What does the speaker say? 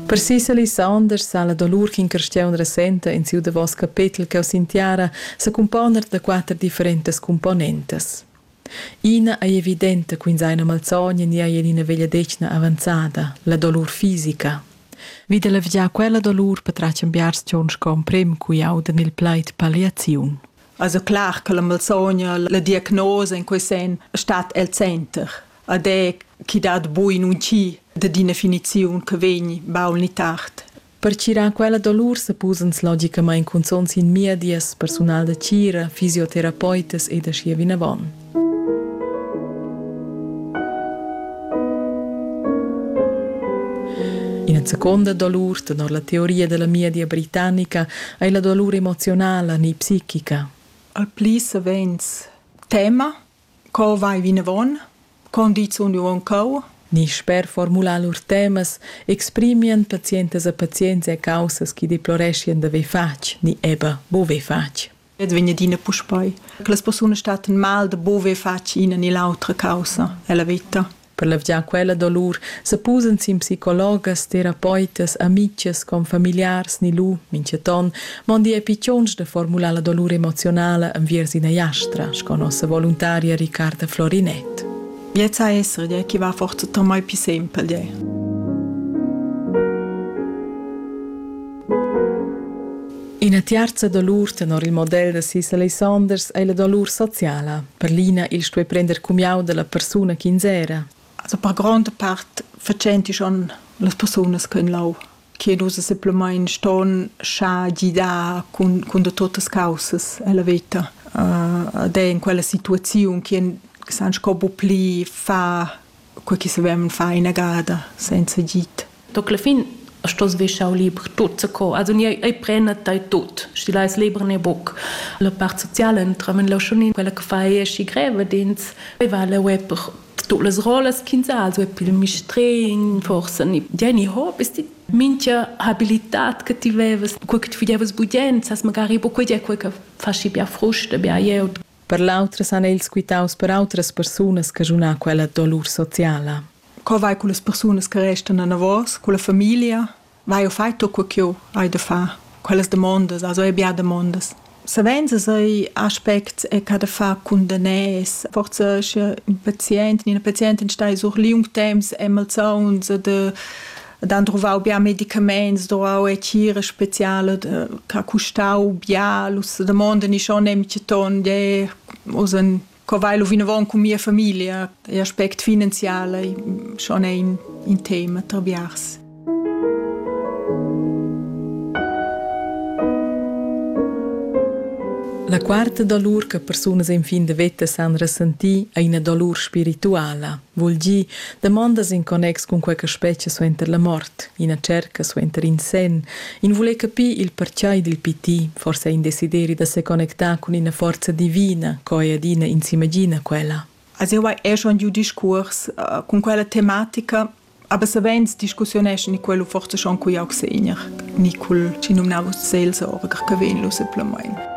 Per Cecily Saunders sa la dolur ch'in carstiaun resenta en siu davos capetel cheu sin tiara secumpona da quater differentas cumponentas. Ina ei evidenta quins ein malsogna ni ei en ina vegliadetgna avanzada, la dolur fisica. Vi da levgiar quella dolur patratgan biars tgons con prem cui audan il plaid palliaziun. Also clar che la malsogna, la diagnosa in quei sen stat el center. ed è chi dat bu in un chi dad ina finiziun che vegn baul ni tard. Pertgirar quella dolur supposans logicamain cunzonts in miedias persunal da tgira, fisioterapeutas ed aschia vinavon. Ina seconda dolur, tenor la teoria della miedia britannica, è la dolur emozionala, ni psichica. Al pli savens tema Co vai vinavon? Con di sun jeu aunc cheu? Ni sper formular lur temas exprimian pazientas e pazients er caussas chi deploreschian d'haver fatg ni eber bover fatg. Ed vegn adina puspei. Che las persunas statten mal da bover fatg ina ni l'autra caussa ella veta. Per levgiar quella dolur sepusan sin psicologas, terapeutas, amitgas, confamiliars ni lu, minchaton, mondi epichons de formular la dolur emozionala enviers ina jastra, sco nossa voluntaria Riccarda Florinet. Jetzt a essere, die chi va forza tomai più sempre, die. Ina tiarza dolur tenor il model da sis Alessanders ei la dolur sociala. Per l'ina il stuei prender cumiau dalla persuna ch'ins era. Also per gronda part facenti schon las persunas che lau chiedusa simplemente ston scha gidar cun, cun da totas causas alla veta. Uh, ed è in quella situazione che san sco bu pli fa co chi savevan far inagada senza git. Donc la fin stos vi schau liber tot se co also ni ei prena tai tot sti lais liber ne boc la part soziale entramen la schon quella che fai schi greve dins va la web tu las rolas quinza also pil mistrein forse ni Jenny Hope ist die mincha habilitat che ti vevas, quel che ti videvas budient, sas magari po quei è quel che fasci bia fruste, bia ieut. Per l'autras han els quitaus per autras persunas caschunà quella dolur sociala. Co vai con las persunas che restan anavos, con la famiglia? Vai o fai tu quel ch'eu hai da far? Quellas demondas, as hai bia demondas. Savens as hai aspects e ca da far cun daners. Forsa sche ün pazient, ina pazientin stai sur liung temps e malsauns de ed han druvau bia medicaments, druvau e tgira speciala che custau bia, los domanda ni schon nemche ton, de us en co vai lu vinavon cun mia famiglia, l'aspect finanzial è schon ein in tema tra biars. La quarta dolur che persunas en fin de veta san ressentir è ina dolur spirituala. vul dir damondas in connex cun quei che spetga suenter la mort, ina cerca suenter in senn, in vuler capir il pertgei dil piti, forse in desideri da seconnectar cun ina forza divina, co ei adina in s'imagina quella. Also jau hai er schon giu discurs uh, con quella tematica, aber savens discussioneschen in quello forse schon cu jauc segner, ni cul ci numnavo Seelsorger che venlo simplemente.